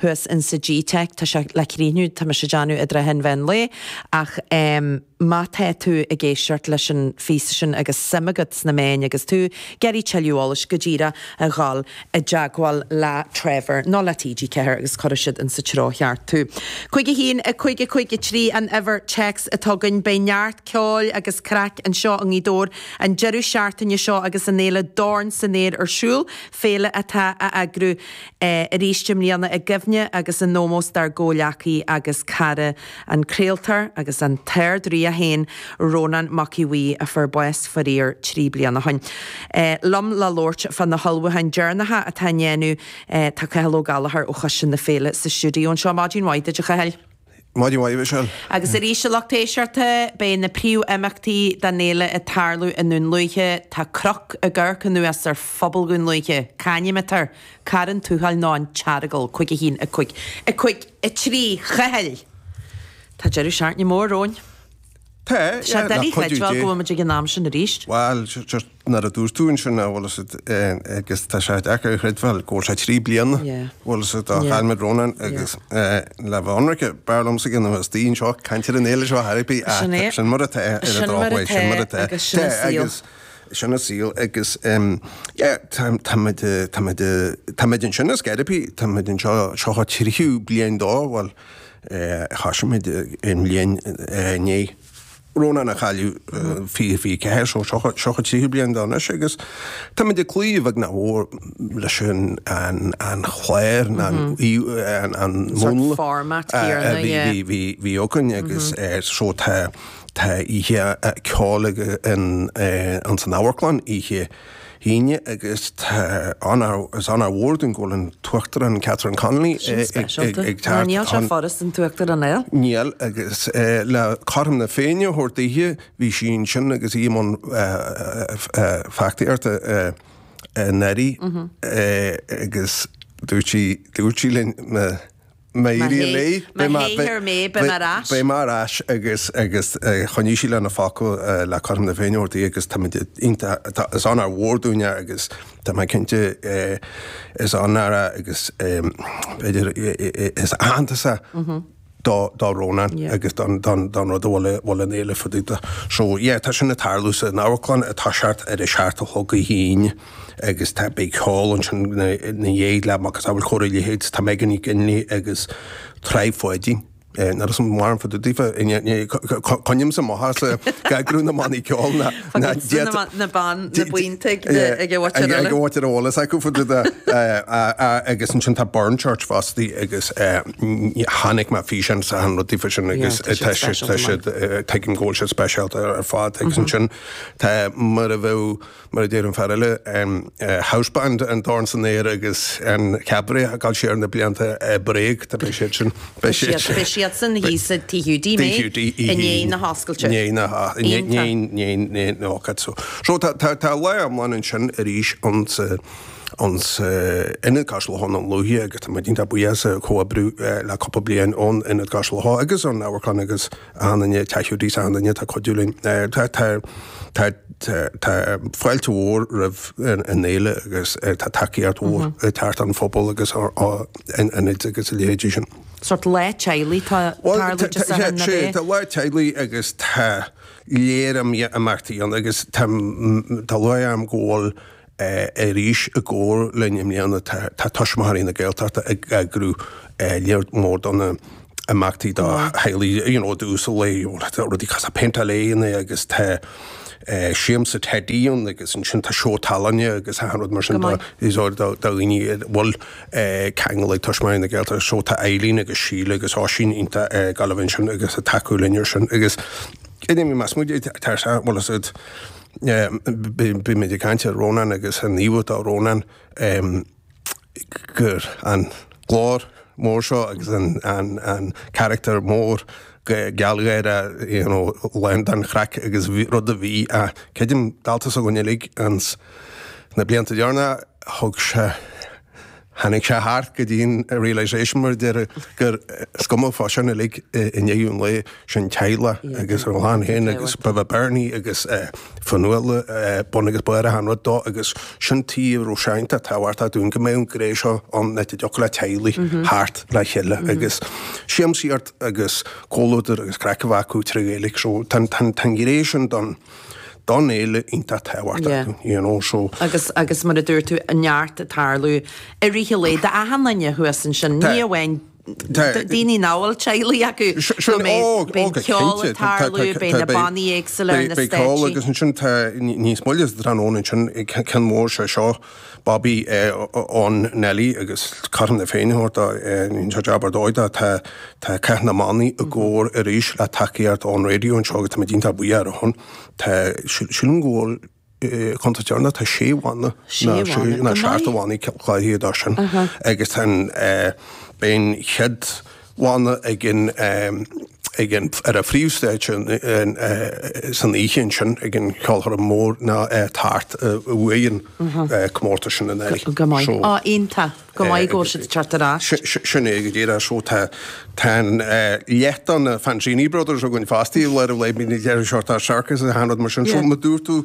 thuas in sa GTeic, tá sé le críochnú, tá mise ag déanamh i dtrátha an mheán lae, ach ehm má tá tú ag éisteacht leis an phíosa sin agus suim agat sna meáin agus tú ag iarraidh tuilleadh eolais, go díreach a dhul i dteagmháil le Trevor nó le TG4 agus cuirfidh siad in sa treo cheart tú. 51553 an uimhir téacs atá againn. Beidh neart ceoil agus craic anseo i nGaoth Dobhair an deireadh seachtaine seo agus an fhéile Dorn san Aer ar siúl, féile atá á eagrú arís i mbliana i gcuimhne agus in ómós dár gcomhleacaí agus cara, an craoltóir agus an tArd-Rí é féin, Rónán Mac Aodh Bhuí, a fuair bás faraor trí bliana ó shin. Liom le labhairt fá na hullmhúcháin deireanacha atá á ndéanamh tá Cathal Ó Gallchóir ó Choiste na Féile sa stiúideo anseo. Maidin mhaith duit, a Chathail. Maidin mhaith, a Mhichelle. Agus arís a lucht éisteachta, beidh na príomhimeachtaí den fhéile ag tarlú i nDún Lúiche. Tá cnoc ag amharc anuas ar phobal Dhún Lúiche. C'ainm atá air, Corrán Tuathail nó an tEaragal. Cúig a haon, a cúig, a cúig a trí, a Chathail! Tá deireadh seachtaine mór romhainn. Tá, yeah. Tá sé doiligh a chreidbheáil go bhfuil muid ag an am sin arís. Bhal, sure. nuair a dúirt tú ansin, an bhfuil a fhios agat, agus tá sé deacair a chreidbheáil go bhfuil sé trí bliana, bhfuil a fhios agat, ó chaill muid Rónán agus le bheith ionraice, b'fhearr liomsa gan a bheith istigh anseo ag caint ar an fhéile seo ar chor ar bith, ach sin mar atá, ar an drochuair, sin mar atá, agus sin an saol agus tá muid ansin ar scor ar bith, tá muid anseo, seo an tríú bliain dó, bhuel, thoisigh muid an bhliain i ndiaidh. Rónán a chailleadh 2024, seo an tríú bliain dó anois agus tá muid ag cloí a bheag nó a mhór leis an chlár, nó an múnla a bhí againn agus so tá oíche ceoil againn san amharclann oíche. hAoine agus is onóir mhór dúinn go bhfuil an tUachtarán Catherine Connolly ag teacht. Níl sé furast an tUachtarán a fháil. Níl, agus le cothrom na Féinne a thabhairt daoithe, bhí sí ansin agus í i mbun feachtasaíochta anuraidh agus dúirt sí linn, Má éiríonn léi, beidh mé, beidh mé ar ais agus, agus choinnigh sí lena focal le cothrom na Féinne a thabhairt daoithe agus táimid iontach, tá, is onóir mhór dúinn é agus tá mé cinnte, is onóir é agus b'fhéidir is aitheantas é do, do Rónán agus don, don, don rud a bhfuil a, bhfuil an fhéile fá dtaobh dó. So, yeah, tá sin ag tarlú sa, in Amharclann tá, seacht, ar a seacht a chlog oíche Aoine. agus tá, beidh ceol ansin ina dhiaidh le macasamhail an chóir a leithéid, tá Megan McGinley agus Trá Pháidín, níl a fhios agam mórán fá dtaobh daofa, coinnímse amach as eagrú na mbannaí ceoil ná na buíonta ag uait ar eolas acu fá dtaobh de, agus ansin tá Burnchurch fosta agus chonaic mé físeán sa an rud daofa sin agus tá siad, tuigim go bhfuil siad speisialta ar fad agus ansin tá mar a bheadh. Mar a deir an fear eile, houseband an dorn san aer agus an cabaret ag gabháil siar na blianta, Bréag, tá beidh siad sin, beidh siad sin. Beidh siad sin thíos i Tigh Hiúdaí Beag i ndiaidh na hoscailte. I ndiaidh na hoscailte. Ó cad so. So tá lá iomlán ansin arís in Ionad Cois Locha i nDún Lúiche agus tá muid iontach buíoch as an chomhoibriú le cúpla bliain ón Ionad Cois Locha agus ón amharclann agus Achan nduine, Tigh Hiúdaí is achan nduine atá ag cuidiú linn. Tá fáilte mhór roimh an fhéile agus tá tacaíocht mhór ag teacht ón phobal agus ó ionaid agus a leithéidí sin. Sórt lá teaghlaigh atá ann Dé Sathairn, an é? Sea, tá lá teaghlaigh agus tá lear imeachtaí ann agus tá lúcháir orm go bhfuil Arís i gcomhar linn i mbliana tá Tuismitheoirí na Gaeltachta ag eagrú lear mór de na imeachtaí do theaghlaigh you know uasal lae rudaí cosúil péinteáil éadan agus tá siamsa teidí ann agus ansin tá seó tallainne agus achan rud mar sin do do dhaoine a bhfuil ceangal acu le Tuismitheoirí na Gaeltachta so tá Eileen agus Síle agus Oisín iontach ar Gaillimh ansin agus ag tacú linn ar sin agus I mean más muid tá bhfuil a fhios agat bhí muid ag caint ar Rónán agus an íomhá atá ag Rónán gur an glór mór seo agus an an character mór gealgháireach you know lán den chraic agus rud a bhí a creidim dálta s'againn uilig ins na blianta deireanacha thug sé Tháinig sé thart go dtí'n realisation mar a déarfá, gur, is cuma fá sin uilig, i ndeireadh an lae, sin teaghlach agus a chlann féin agus ba bhé Bernie agus Fionnuala bun agus barr achan rud dó agus sin tuige a raibh sé iontach tábhachtach dúinn, go mbeadh an ghné seo ann le go dtiocfadh le teaghlaigh theacht le chéile agus siamsaíocht agus comhluadar agus craic a bheith acu trí Ghaeilge so tá an ghné sin don Don fhéile iontach tábhachtach, you know, so. Agus, agus mar a dúirt tú, neart ag tarlú i rith an lae d'achan nduine thuas ansin, ní amháin daoine a bhfuil teaghlaigh acu, nó beidh, beidh ceol ag tarlú, beidh na bannaí éagsúla ar na stéitsí. Beidh ceol agus ansin tá níos moille sa tráthnóna ansin, ceann mór sé seo. Bobby, Eh, on Nelly agus Carthan é féin a thabhairt dó, eh, rinne siad jab ar dóigh de, tá, tá Cath na mBannaí i gcóir arís le tacaíocht ón raidió anseo agus tá muid iontach buíoch ar a shon. Tá, sil, sílim go bhfuil, eh, contae Charna, tá sé bhanna, Sé na, sé, bhanna, nó seacht, go maith, mbannaí cláraithe dó sin. Aha. Agus tá an, eh, beidh an chéad, bhanna ag an, ag an, ar an phríomhstage an, an, san oíche ansin ag an cheolchoirm mór ná é tart a bhuaigh an comórtas sin in Éirinn. Go maith. So. Ah, iontach. Go maith go bhfuil siad tart ar ais. Sin é go díreach. So tá, tá an leath de na Fanzini Brothers againn fosta, le cleasaíocht sorcais, achan rud mar sin. So mar a dúirt tú.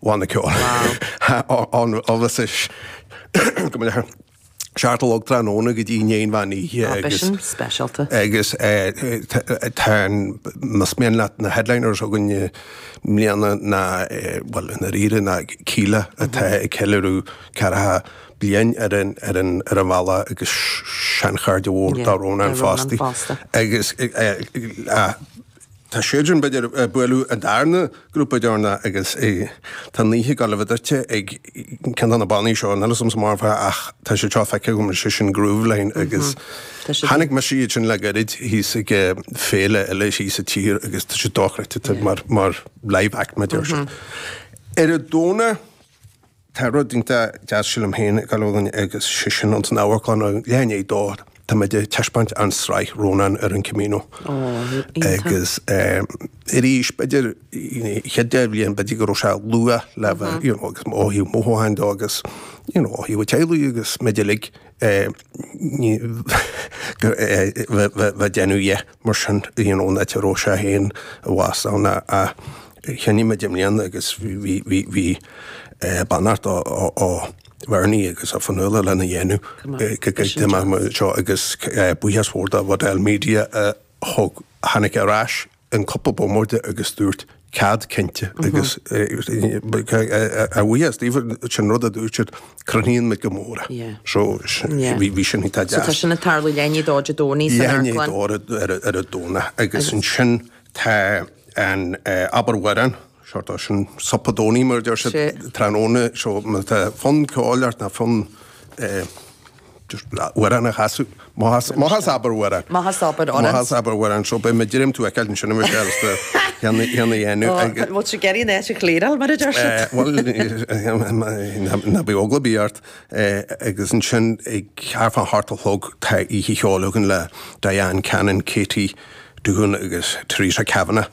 Bannaí ceoil ó seacht a chlog tráthnóna go dtí i ndiaidh an mheán oíche agus tá an, más mian leat na headliners againn i mbliana ná, bhuel, i ndáiríre ná Kíla atá ag ceiliúradh ceathracha bliain ar an, ar an, ar an bhealach agus seanchairde mhór do Rónán fosta agus Tá siad sin ag gabháil a bheith ag bualadh an darna grúpa deireanach agus tá an oíche ag gabháil a bheith druidte ag ceann de na bannaí seo. Níl a fhios agamsa an bhfaca ach tá siad seo feicthe agam, is é sin Grooveline agus chonaic mise iad sin le gairid thíos ag féile eile thíos sa tír agus tá siad dochreidte mar live act, mar a deir siad. Ar an Domhnach. Tá rud iontach deas, sílim féin, ag gabháil againn agus sé sin ins an amharclann ag leath i ndiaidh a dó. Tá muid ag taispeáint an sraith Rónán ar an Camino agus arís, b'fhéidir an chéad dá bhliain, b'fhéidir go raibh sé luath le bheith, you know, agus ó thaobh mothúchán de agus, you know, ó thaobh an teaghlaigh agus muid uilig, a bheith ag déanamh dhe. Mar sin, rian ón eite a raibh sé féin i bhfad ann a chluinim i mbliana agus bhí beannacht ó Bhernie agus ó Fionnuala lena dhéanamh go gcreidfidh mé é seo agus buíochas mór do Waddell Media a thug, a tháinig ar ais in cúpla bomaite agus dúirt cead cinnte agus a bhuíochas daoibh sin rud a dúirt siad crothnaíonn muid go mór é. So bhí sin iontach deas. So tá sin ag tarlú leath i ndiaidh a dó Dé Domhnaigh san Amharclann. Leath i ndiaidh a dó ar an Domhnach agus ansin tá an Abair Amhrán, so tá sin Super Domhnaigh mar a deir siad tráthnóna so má tá fonn ceoil ort ná fonn Amhrán a chasadh, má chas, Abair Amhrán. Má chas, Abair Amhrán. Má chas, Abair Amhrán, so beidh mé ag dréim tú a fheiceáil ansin a Mhichéil, is do cheann a dhéanamh ag. An bhfuil sé ag iarraidh an áit a chliaráil mar a deir siad? Bhuel, ná bíodh eagla ar bith ort, agus ansin ag thart fá hocht a chlog tá oíche cheoil againn le Diane Cannon, Katie Duggan agus Teresa Kavanagh.